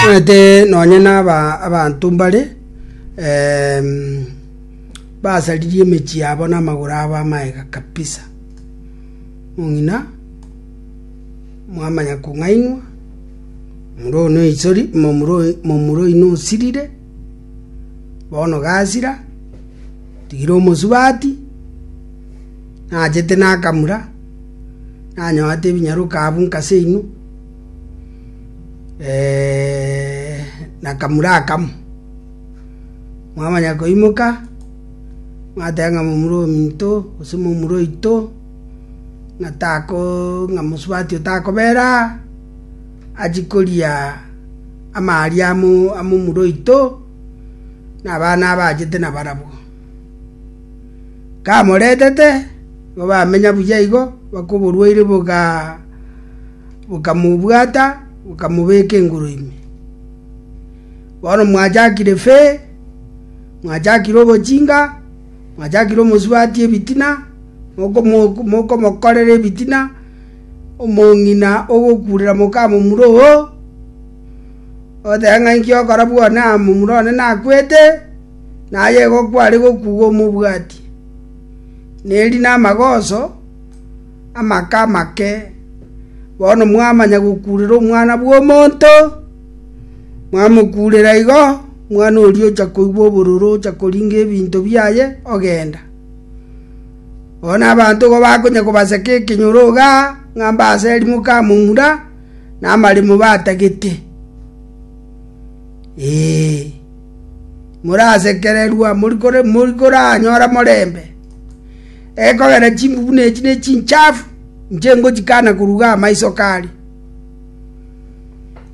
Omanyete nonye naba abanto mbare em, basaririe emechie yabo na amagoro abo amaega kabisa. Mong'ina mwamanya kong'ainwa, omura one oisori momura oyi- momura oyio nosirire, bono gasira, tigira omosubati, nachete nakamura, nanyoete ebinyaroka abwo nkaseino. eh, na kamura akamo mwamanya koimoka mwateba ng'a momura ominto gose momura oito ng'a tako ng'a mosubati otakobera achi koria amaria amo amomura oito na abana abachete nabarabwo. Kamoretete igo bamenya buya igo bakoborwaire bogaa. bokamobwata, bokamobeka engoro ime. Bono mwachakire fee, mwachakire obochinga, mwachakire omosubati ebitina, mokomokorera ebitina, omong'ina ogokurera mokamomura oo, oteba ng'a inki ogokora bwona momura one nakwete, naye egokwa are gokuga omobwati. Neri namagoso. Amaka amake! Bono mwamanya gokuurera Omwana bw'Omonto, mwamokuurera igo, omwana oria ocha koigwa obororo ocha koringa ebinto biaye ogenda. Bono abanto igo bakonya kobaseka ekenyoroga ng'a mbase erimo kamomura na amaremo batagete. Ee, morasekererwa, mori koranyora morembe. Ekogera chimbu buna echi nechinchafu, inche ngochikana koruga amaiso kare.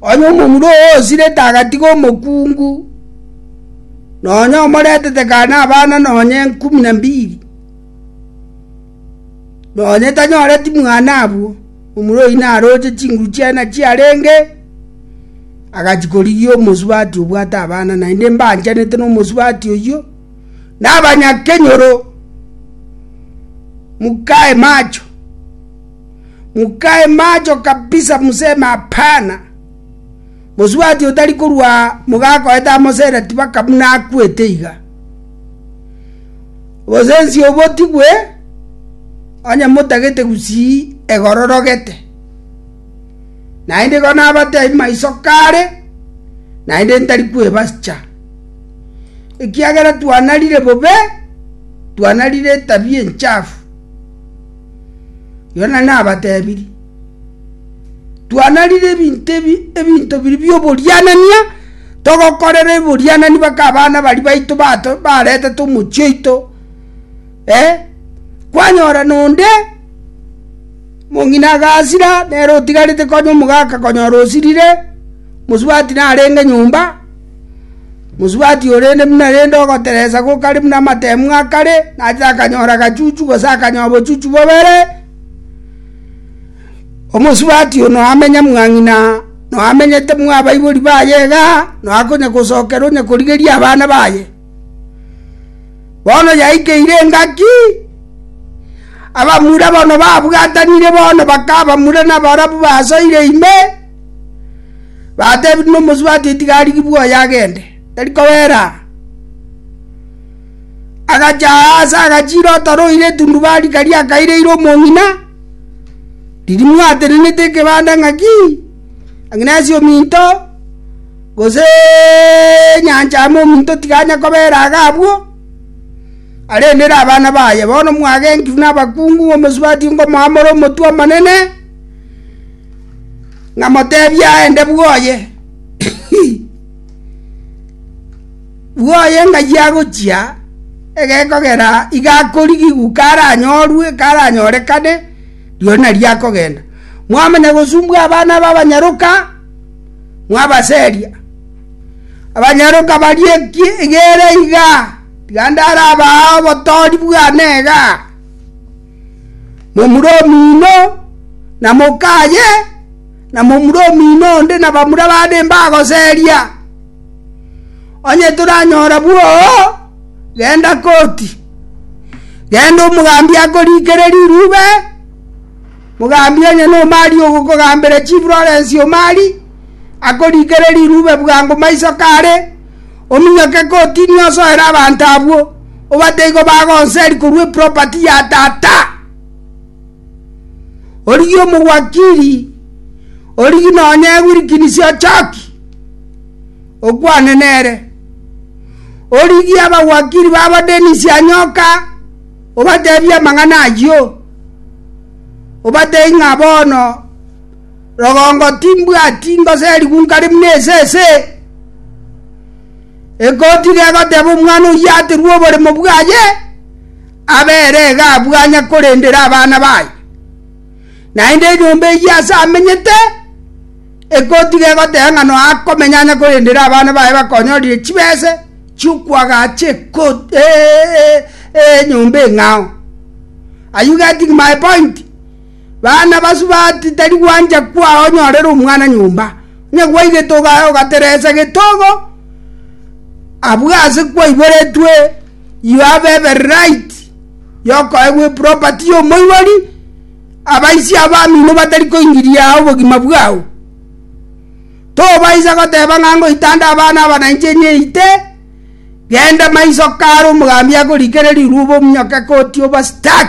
Onye omomura oo osirete agatiga omokungu, nonya omoretete kane abana nonya enkumi na mbiri, nonya tanyoreti mwana abwo, omura oyio naroche chinguru chiane chiarenge, agachikorigia omosubati obwate abana, naende mbaanchanete nomosubati oyio. nabanyakenyoro, mukae macho, mukae macho kabisa, museme Hapana! Mosubati otari korwa aa mogakoete amo sere tibaka buna akwete iga. Obosensi obo tibwe onye motagete gusii egororogete. Naende igo nabatebi maiso kare, naende ntari kwebacha. ekiagera twanarire bobe, twanarire etabia enchafu. Yona nabatebirie, twanarire ebinto ebi ebinto biri bi'oborianania, togokorera eborianani mpaka abana baria baito bato baretete omochie oito, eh, kwanyora na onde, mong'ina agasira nere otigarete konya omogaka konyora osirire, mosubati narenge nyomba. Mosubati o rende buna rende ogoteresa gokare buna amateemwa a kare, nache akanyora agachuchu, gose akanywa obochuchu bobere. Omosubati oo noamenya mwa ng'ina, noamenyete mw'abaibori baye iga, noa konya gosokera onye korigeria abana baye. Bono yaikeire engaki, abamura bono babwatanire bono bakabamura nabarabwo basoire ime. Batebirie nomosubati atiga arigibwe oye agende, tari kobera aa. Agacha aase agachira otoro oire etundubari karia akaireire omong'ina, riria mwatenenete ekebanda ng'aki, ng'aki nase ominto, goseeee nyancha amo ominto tiga anye kobera iga abwo, arendere abana baye. Bono mwagenkigwe nabakungu, omosubati nkomoamore omotwe omonene. ng'a moteebie aende bwoye, bwoye ng'ai agochia egekogera iga akorigigwa karanyorwe karanyorekane, rirorio nario akogenda. Mwamanya gosumbwa abana aba abanyaroka, mwabaseria. Abanyaroka baria eki egere igaa, tiga ndarabae obotoori bwane igaa. momura omino, na mokaye, na momura omino onde na bamura bande mbagoseria. Onye toranyora bwoo, genda koti. Genda omogambi akorikere rirube, mogambi onye nomari ogokogambera chifurorensi omari, akorikere rirube bwango maiso kare, Ominyoke kotini osoere abanto abwo, obate igo bagonseri korwa eproperty ya tata. Origie omowakiri, origie nonye ewilkinisi ochoki, okwane nere. Origie abawakiri babo Dennis Anyoka, obatebie amang'ana ayio, obate ing'a bono Rogongo timbwati ngosa erigunka rimuna esese, egoti regoteba omwana oyio aterwe oboremo bwaye, abere iga abwanya korendera abana baye. Naende enyomba eyio ase amenyete, egoti gegoteba ng'a nonya akomenya anya korendera abana baye bakonyorire chibese chiokwagacha ekoti enyomba eng'ao. Are you getting my point? Baanabasu bati, Tari gwancha kwao onyorere omwana nyomba, onye gwaigete ogaya ogateresa getogo abwo ase kwaiboretwe you have every right yokoegwa eproperty y'omoibori, abaisia abamino batari koingiria obogima bwao. Tobaisa goteba ng'a ngoitanda abana aba na inche nyeite, genda maiso kare omogambi akorikereria rwa obominyoke koti obastuck.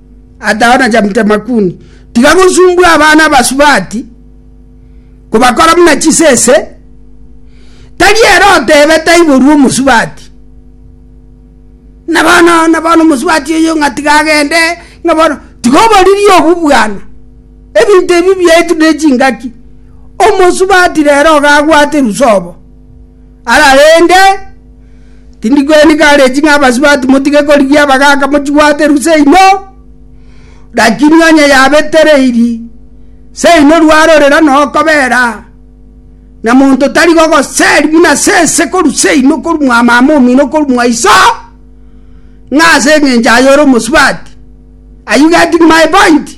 Atao na Jamtemakuni, tiga gosumbwa abana abasubati, kobakora buna chisese, tari ere otebe taiborwe omosubati. Na bono na bono omosubati oyo ng'a tiga agende ng'a bono tiga oboririe obwo bwana ebinto ebi biaetu ne chingaki omosubati rero iga agwate rusobo Ararende, tindi kweni gareji ng'a abasubati motige korigia abagaaka mochibwate rue seino, lakini onye yabetereiri, seino rwarorera nokobera, na monto tari gogoseri buna sese korwa seino korwa mwamama omino korwa mwaiso, ng'a ase engencho aye ore omosubati. Are you getting my point?